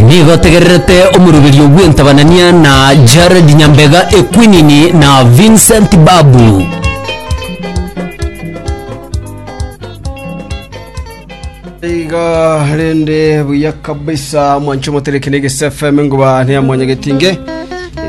Nigo tegererete omoruberio bw'entabanania na Jared Nyambega Ekwinini na Vincent Babu. iga rende buya kabisa mwancho motereke nege sfm ngoba ne mwanya getinge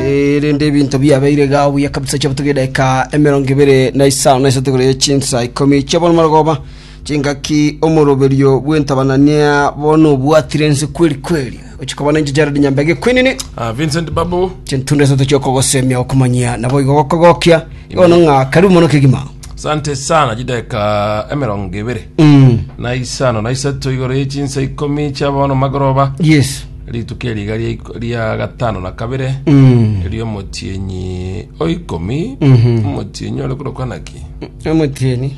Eh, rende ebinto biabeire ga buya kabisa chabutugedeka emerongo ibere na isano na isategore chinsa ikomi chabona marogoba Chingaki omoroberio bw'entabanan'ia bono nobwatire nse kweri kweri, ochia koba nenchera Jared Nyambega ekwenene, Ah, Vincent Babu. chintundu isato chi'okogosemia, okomanyia, na boigo gokogokia, igo bono ng'a karibu mono kegima. Sante sana chideka emerongo ebere Mm, na isano na isato igoro ye chinsa ikomi chia bono magoroba yes. rituko eriga ria iko- ria gatano na kabere Mm. erio omotienyi oikomi Mhm. omotienyi ore korokwa naki Omotienyi.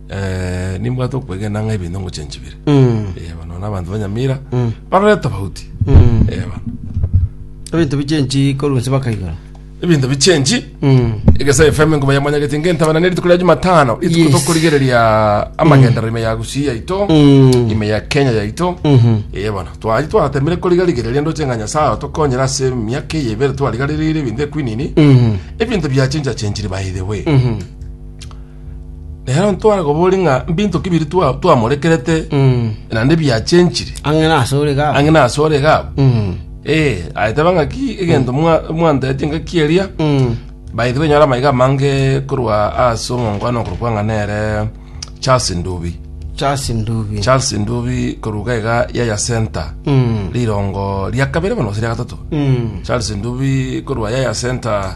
Eh, nimbwate okwegena ng'a ebinto ngoche nchibire Mm. Eh, bano nabanto banyamira Mm. barore tofauti Mm. Eh, bano ebinto bichenchi korwa nse bakaigora ebinto bichenji Mm. egesa efm ngoba yamanyagete ngentabana ne rituko ria jumatano Yes. rituko tokorigereria amagendero ime ya gusii yaito Mm. ime ya kenya yaito Mhm. ee bono twari twatemire korigarigereria ndoche ng'a nyasaye otokonyera ase emiaka eye ebere twarigarerire ebinto ekwinini Mhm. ebinto biachenjachenchiri by the way Mhm. Nero ntware koboria ng'a mbinto ki biria twa- twamorekerete naende biachenchire Ang'e nasore iga. ang'e nasore iga abwo. Mm. Eh, aeteba ng'aki egento mwa- mwantetie ngaki eria Mm. by the way nyora amaiga amange korwa ase omongwana okorwa kwang'a nere charles ndubi Charles Ndubi. charles ndubi korwa iga iga yaya center Mm. rirongo ria kabere bono gose ria gatato Mm. charles ndubi korwa yaya center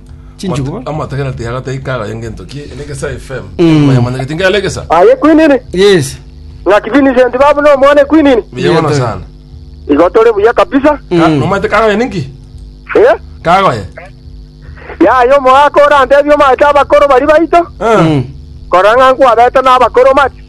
Chinchugubo. Mat- amatakera tiaga taika agayo ngento ki ene gesa fm mayamanyageti ngale egesa aye kwinini Yes. ng'aki vincent babu no mwana kwinini biyagono Biyato. sana igotore buya kabisa Ka- Mm. nomate kagoye ninki Eh? kagoye yaye omogaka orantebia omate abakoro bari baito Eh. Mm. korora ng'a nkwabete n'abakoro mati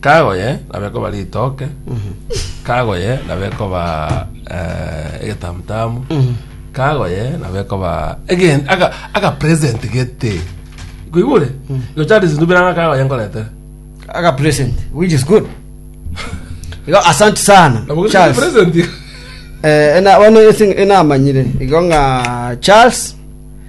Kago yaye nabo ekoba ritoke, kago yaye nabo ekoba eh, egetamutamu, kago yaye nabo ekoba again, aka, aka present gete. Kuigure? Go chari sindubira nga kago yaye nkoretere. aga present which is good igo asante sana Nabo gete Charles present. eh ena bono ese enamanyire igo ng'a Charles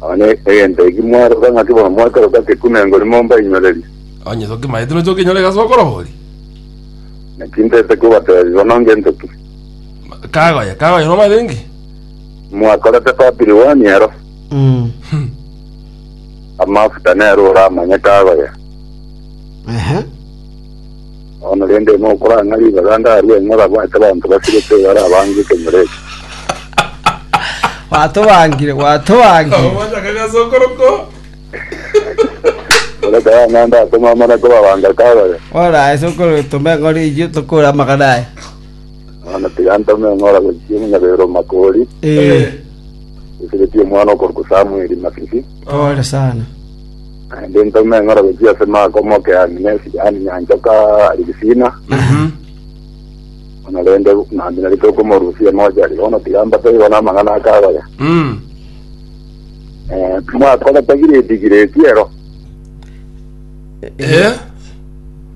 Nonya egento eki mwaroka ng'aki bono mwakeroka kekunengo rimo mbainyorerie. Onye tokimaete nonya tokenyore gase okorori. Naki ntete kobateebia bono ngento ki. Kagoye, kagoye nomanyete inki? Mwakorete Papiri one ero. Amafuta nere oramanye kagoye. Ehe. Bono rende ime okora ng'a ribaga ndarue ng'a orabwate abanto basirete bare abange ekenyoro eke. Gwatobangire, gwatobangire. Ogochaka gase okorokwo. Ore kare ng'a ndatome amana kobabanga kabare. Ora ase okoro tome ng'ore iyio tokore amagana aya. Bono tiga ntome ng'a oragochia omonyabeero makori, Eh, osiretie omwana okorokwa Samueli mabibi. pole sana. Naende ntome eng'orobe chi'ase Maaka omoke Aminesi, yaani Nyanchoka Aligisina, buna rende naminye ritokomorusia emojari. Bono tiga mbatebigwa namang'ana aka abaga. Mm. Eh, Mwakorete gireti gireti ero. Eh,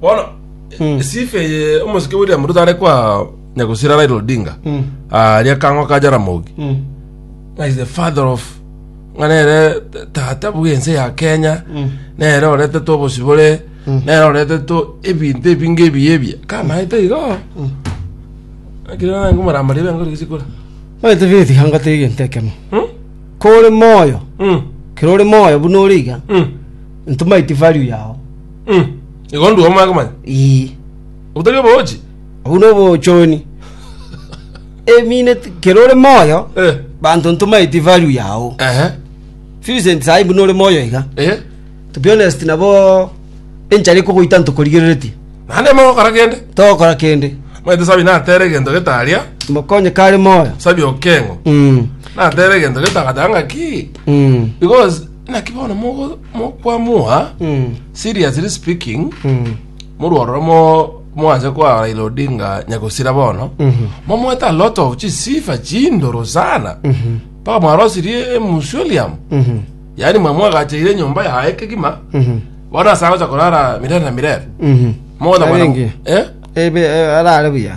bono Mm. sifa eye omosike william ruto are kwa nyagusira raila odinga Mm. aria kang'o ka jaramogi Mm. Nga is the father of nga nere t- tata bwense ya kenya Mm. nere orete to obosibore nere orete to ebinto ebinge ebiya ebiya kamaete igo akire nange omoramari ebe yango rigisikora Maete beti hanga tege ntekemo. Kore moyo, kero ore moyo buna ore iga. Ntomaiti value yao. Mm. Igo ndua omwaka manya. Ii. Obutari obochi. Obu no bochoni. A minute kero ore moyo. Eh. Banto ntomaiti value yao. Ehe. Vincent sai buna ore moyo iga. Eh. To be honest nabo enchara ikogoita ntokorigereretie. Nande mo kora kende. Tokora kende. Maite sabi na tere gento getaria. Mokonye kare moyo. Sabi okengo. Mm. Na tere gento getagatanga ki. Mm. Because Naki bono mogo- mo- kwamoa seriously speaking morwa ororo mo- mwanse kwa Raila Odinga nyagosira bono momoete a lot of chisifa chindoro sana mpaka mwarosirie emusulium yaani mwamwagacheire enyomba yaye kegima bono ase agocha korara mirere na mirere Mogocha kwana- Arenge. Eh? ebe eh, arare buya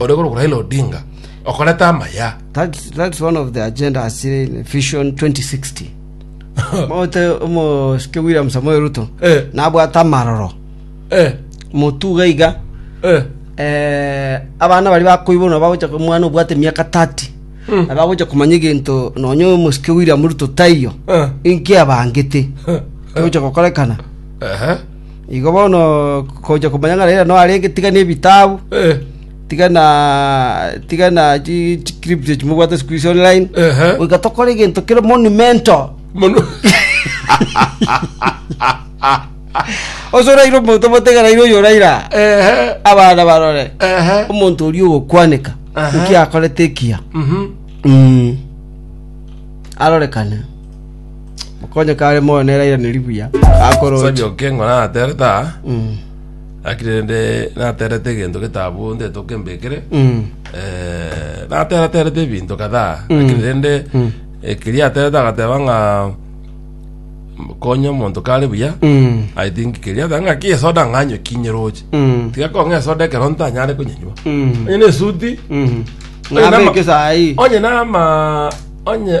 ore korokwa Raila Odinga, okoreta amaya. That, that's one of the agenda asire in Vision 2060. Mote omosike William Samoei Ruto Eh. nabwate amaroro Eh, motuga iga eh, eh, abana bari bakoibwa na bagocha omwana obwate miaka 30 Mm. na bagocha komanya egento nonya omosike William Ruto taiyo eh, inki abangete eh, gocha gokorekana ehe. Igo bono kogocha komanya ng'a Raila noo arenge, tiga nebitabu, tiga na tiga na chi chiclip echi mobwate siku hizi online, Ehe. goika tokore egento kere monumental. Mono. Ase oraire omonto obote ng'a Raila oyo Raila, Ehe. abana barore, Ehe. omonto oria ogokwaneka, Aha. naki akorete ekiya. Mhm. Mm. Arorekane. Mokonye kare moyo nere airanerie buya, akoroche. Osabi oke ng'o naterete aa, Mm, lakini rende naterete egento getabu nde toke mbekere mm, eh, nateraterete ebinto kadhaa lakini rende mm. ekeria aterete agateba ng'a konya omonto kare buya mm, i think keria ateba ng'a ki esoda ng'anywe kinyeroche mm, tiga kong'a esoda ekero ntanyare konyenywa mm, onye na esuti mm. Oye nama- Ng'abeke saii. onye nama onye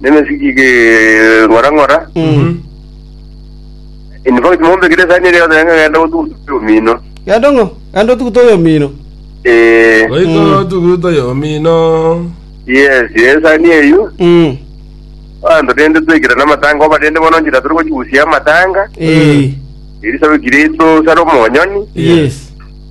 nemesiki keng'ora-ng'ora. In fact, mombe kere esani eria yonsi nanga genda gotuguta oyomino. Genda ng'o? Genda otuguta oyomino. Eh, Goika otuguta yomino. yes, esani eyio. Mm. Abanto rende twekirana amatanga oba rende bono nchera tore gochigusia amatanga. Eh. Elisabeth Kiristo sare omonyoni. Yes.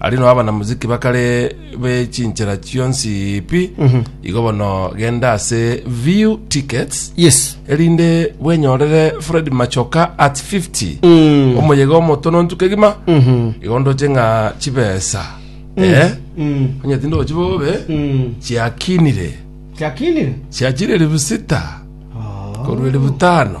Aria nao abanamuziki bakare be chinchera chionsi pi igo bono genda ase view tickets yes erinde bwenyorere fred machoka at 50 omoyega omotonontu kegima igo ndoche ng'a chibesa eh onye tinde ochi bobe chiakinire kiakinire chiachire elifu sita korwa elifu tano